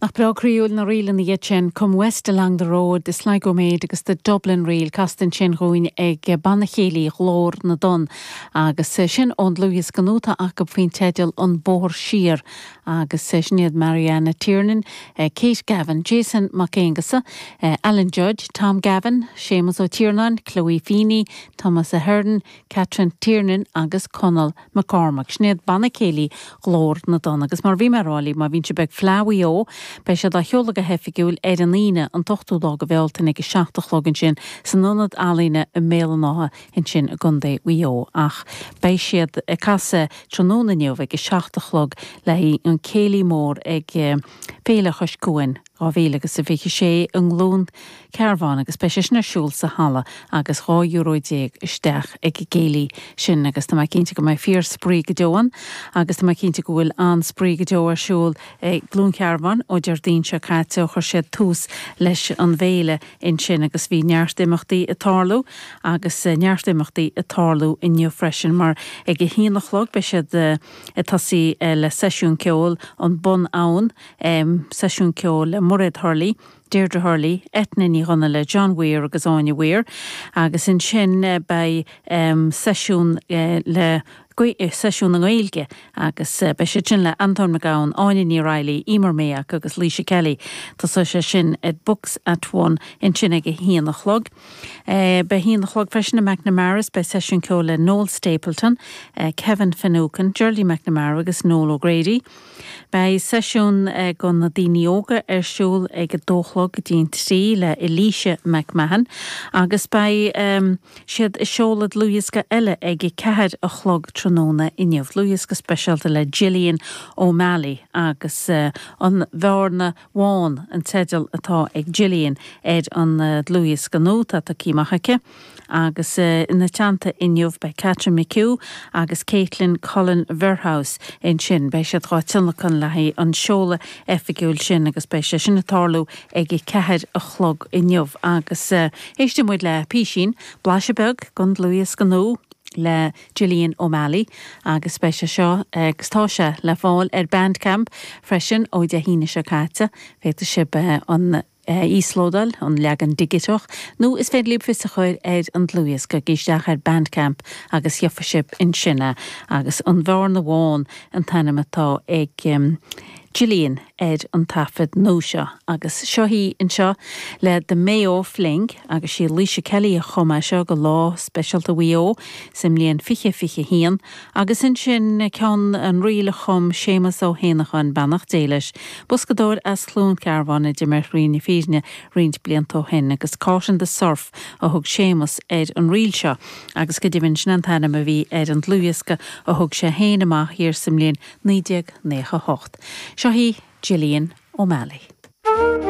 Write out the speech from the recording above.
Nach breá croíúil na ríleanna iad sin, Come West Along the Road, The Sligo Maid agus The Dublin Reel, casta ansin dhúinn ag Banna Céilí Ghlór na dTonn agus sin ón dlúthdhiosca nua atá acu faoin teideal An Bóthar Siar agus sin iad Marianna Tiernan, Kate Gavin, Jason Mac Aongusa, Alan Judge, Tom Gavin, Séamus Ó Tiarnáin, Chloe Feeney, Thomas Ahern, Catherine Tiernan agus Conall McCormack. Sin iad banna céilí Ghlór na dTonn agus mar a bhí mé ag rá libh, má bhíonn sibh ag Fleadh Mhaigh Eo, beidh siad á sheoladh go hoifigiúil ar an Aoine, an t-ochtú lá de Bhealtaine ag a seacht a chlog ansin san Ionad Ealaíne i mBéal an Átha ansin i gContae Mhaigh Eo. Ach beidh siad ag casadh tráthnóna inniu ag a seacht a chlog le haghaidh an céilí mór ag Féile Chois Cuain. dhá mhíle agus a fiche sé i gCluain Cearbán agus beidh sé sin ar siúl sa halla agus dhá euro déag isteach ag an gcéilí sin agus tá mé cinnte go mbeidh fíor spraoi go deo ann agus tá mé cinnte go bhfuil an-spraoi go deo ar siúl i gCluain Cearbán ó Déardaoin seo caite ó chuir siad tús leis an bhféile ansin agus bhí neart imeachtaí ag tarlú agus neart imeachtaí ag tarlú inniu freisin mar ag a haon a chlog beidh siad ag tosaí le seisiún ceoil An Bhun Abhainn um Seisiún Ceoil le Mairéad Hurley, Deirdre Hurley, Eithne Ní Dhonaile, John Weir agus Áine Weir agus ansin beidh um seisiún le Gaeilge, seisiún i nGaeilge agus beidh sé sin le Antóin Mac Gabhann, Áine Ní Raghallaigh, Emer Mayock agus Laoise Kelly. Tosóidh sé sin ag Books at One ansin ag a haon a chlog. um beidh haon a chlog freisin i McNamara's beidh Seisiún Ceoil le Noel Stapleton, Kevin Finucane, Geraldine McNamara agus Noel O'Grady. Beidh seisiún do na daoine óga ar siúl ag a dó a chlog go dtí an trí le Alisha McMahon agus beidh siad ag seoladh dlúthdhiosca eile ag a ceathair a chlog tráthnóna inniu, dlúthdhiosca speisialta le Jillian O'Malley agus An Bhearna Bhán an teideal atá ag Jillian ar an dlúthdhiosca nua atá tagtha amach aici. agus ina teannta inniu beidh Catherine McHugh agus Kaitlin Cullen-Verhauz ansin. Beidh siad dhá tionlacan le haghaidh an seoladh oifigiúil sin agus beidh sé sin ag tarlú ag a ceathair a chlog inniu agus éistfidh muid le písín, blaiseadh beag den dlúthdhiosca nua le Jillian O'Malley agus beidh sé seo agus tá sé le fáil ar Bandcamp freisin ó Dé hAoine seo caite. Féadfaidh sibh an. a íoslódáil, an leagan digiteach, nó is féidir libh fios a chur ar an dlúthdhiosca. Gaibh isteach ar Bandcamp agus gheobhaidh sibh ansin é. Agus An Bhearna Bhán an t-ainm atá ag Jillian ar an taifead nua seo. Agus seo í anseo le The Mayo Fling, agus sí Laoise Kelly a chum é seo do lá speisialta Mhaigh Eo sa mbliain fiche fiche haon. Agus ansin ceann an ríl a chum Séamus Ó hÉanacháin, beannacht Dé leis, boscadóir as Chluain Cearbhán a d'imigh ar shlí na fírinne roinnt blianta ó shin, agus Caught in the Surf a thug Séamus ar an ríl seo, agus go deimhin sin an t-ainm a bhí ar an dlúthdhiosca a thug sé féin amach thiar sa mbliain 1998. Seo hí Gillian O'Malley.